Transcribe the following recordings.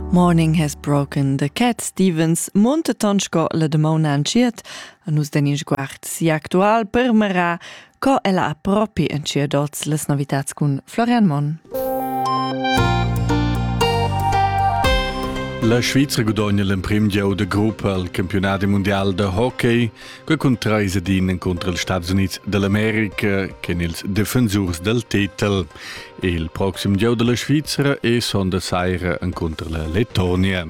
Morning has broken the cat Stevens munteton sco la damona anschiet, a nus den in sguard si actual permera, co ella ha propi entschiet oz les novitats cun Florian Monn. La Svizra gudogna l'emprim gieu de gruppa al campionat mundial de hockey. Que cuntraisa din encontro els Staats Unids dell'America chen ils defensurs del titel. Il proxim gieu della Svizzera è sonda saira encontro la Lettonia.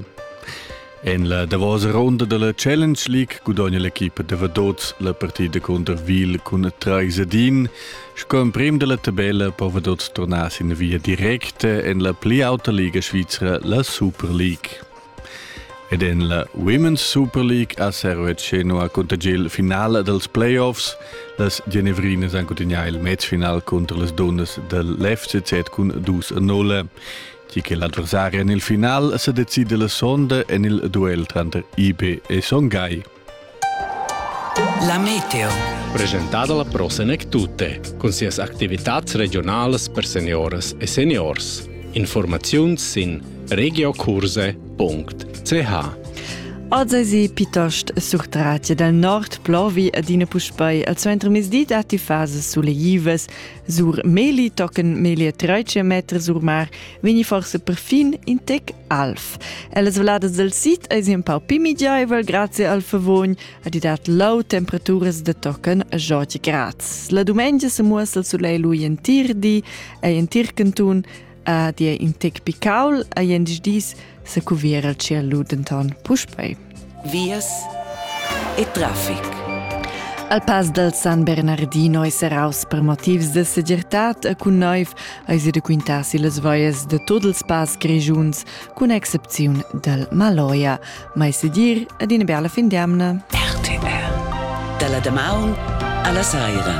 En la davosa ronda della Challenge League gudogna l'equipa de Vaduz la partida contro Wil cun Traisadin. Sco emprem della tabella po Vaduz tornar sin via directa en la pli auta liga svizra, la Super League. Ed en la Women's Super League a Servetscheno ha contagià il finale dals playoffs. Las Genevrinas han cuntinuà il matchfinal cunter las dunnas dal l'FCZ cun 2 a 0. Tgi che l'adversari en il final sa decida la sonda en il duel tranter IB e Songhai. La meteo. Presentada la prosenek tutte, cun sias activitats regionalas per senioras e seniors. Informaziuns sin regiokurse.ch Az esi pitost surtrati dal nord plovi adina puspei al suentermezdi datti fases suleivas Sur Meli tochen meglier 13 meter sur mar vegni forse perfin in tec alv. Ellas veladas del sit eis un pau pi midiaivel grazie al favogn ad i dat low temperaturas de tochen a 20 grads. La dumengia se muossa il soleil lui entir di ei en tir cantun Ed è in tec picaul a jens dis se cuviera cia ludenton puspei. Vias e traffic. Al pass dal San Bernardino è seraus per motivs de segirtad e cun noiv ai si de quintasi las voies de tot els pass grigiuns, cun excepziun del Maloia, mai sedir ad una bella fin d'amna. RTR. Dalla damaun alla saira.